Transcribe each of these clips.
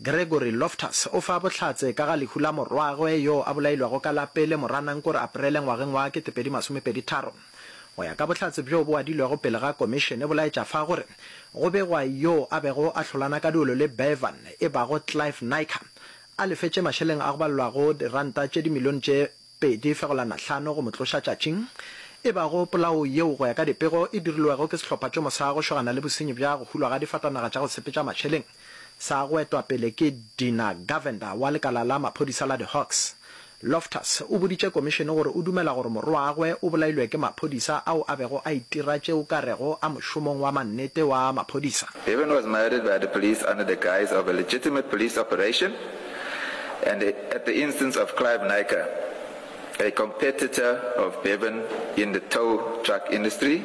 Gregory Loftus o fa bohlatse ka ga lehu la morwagwe yo a bolailwago ka la pele Moranangkore Aprele ngwageng wa 2023. Go ya ka bohlatse bjo bo adilwego pele ga komišene bo laetša fa gore go begwa yo a bego a hlolana ka duelo le Bevan e bago Clive Naicker a lefetše mašeleng a go balwago diranta tše dimilione tše pedi fegolana hlano go mo tloša tšatšing e bago polao yeo go ya ka dipego e dirilwego ke sehlopha tšomo sa go šogana le bosenyi bja go hulwa ga difatanaga tša go sepetša mašeleng. Sa go etwa pele ke Dina Govender wa lekala la maphodisa la di-Hawks. Loftus o boditše komišene gore o dumela gore morwagwe o bolailwe ke maphodisa ao a bego a itira tše o ka rego a mošomong wa mannete wa maphodisa. Bevan was murdered by the police under the guise of a legitimate police operation and at the instance of Clive Naicker, a competitor of Bevan in the tow truck industry.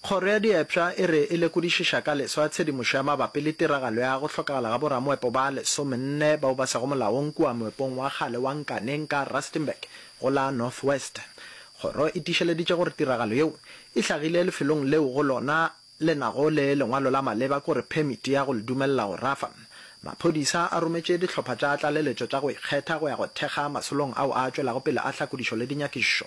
Kgoro ya Diepša e re e lekodišiša ka leso ya tshedimošo ya mabapi le tiragalo ya go hlokagala ga boramoepo ba lesomenne bao ba sego molaong kua moepong wa kgale wa Nkaneng ka Rustenburg go la North West. Kgoro e tiišeleditše gore tiragalo yeo e hlagile lefelong leo go lona le nago le lengwalo la maleba kore phemiti ya go le dumelela go rafa. Maphodisa a rometše dihlopha tša tlaleletšo tša go ikgetha go ya go thekga masolong ao a tšwelago pele a hlakodišo le dinyakišišo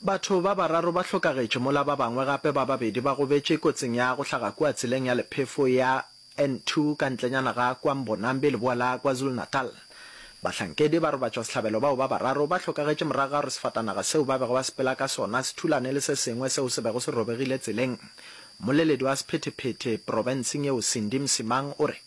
Batho ba bararo ba hlokagetše mola ba bangwe gape ba babedi ba gobetše kotsing ya go hlaga kua tseleng ya lephefo ya N2 ka ntlenyana ga kwa Mbonambi leboa la KwaZulu-Natal. Bahlankedi ba robatšwa sehlabelo bao ba bararo ba hlokagetše morago ga gore sefatanaga seo ba bego ba sepela ka sona se thulane le se sengwe seo se bego se robegile tseleng. Mmoleledi wa sephethephethe profenseng yeo Cindy Msimang o re.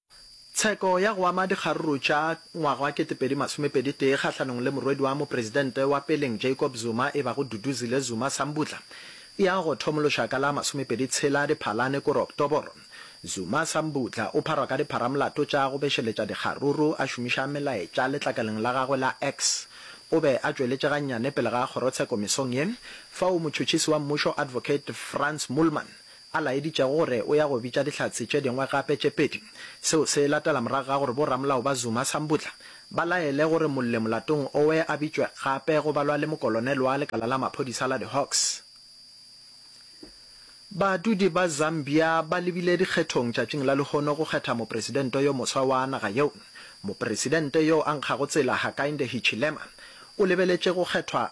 Tsheko ya go ama dikgaruru tša ngwaga wa 2021 kgahlanong le morwedi wa mopresidente wa peleng Jacob Zuma e bago Duduzile Zuma Sambudla e ya go thomološa ka la masomepedi tshela Diphalane kore Oktoboro. Zuma Sambudla o pharwa ka dipharamolato tša go bešeletša dikgaruru a šomiša melaetša letlakaleng la gagwe la X. O be a tšweletše gannyane pele ga kgorotsheko mesong ye fao motšhotšhisi wa mmušo Advocate Frans Moolman a laeditšego gore o ya go bitša Dihlatse tše dingwe gape tše pedi. Seo se latela morago ga gore bo-ramolao ba Zuma, Sambudla, ba laele gore molle molatong owe a bitšwe gape go balwa le mokolonel wa lekala la maphodisa la di-Hawks. Badudi ba Zambia ba lebile dikgethong tšatšing la lehono go kgetha mopresidente yo moswa wa naga yeo. Mopresidente yo a nkgago tsela Hakainde Hichilema o lebeletše go kgethwa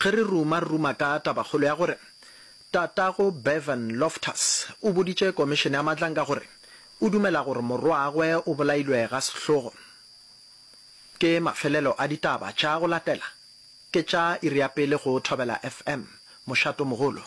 Ge re ruma, re ruma ka tabakgolo ya gore Tatago Bevan Loftus o boditše Komišene ya Matlanka gore o dumela gore morwagwe o bolailwe ga sehlogo. Ke mafelelo a ditaba tša go latela, ke tša iri ya pele go Thobela FM, Mošatomogolo.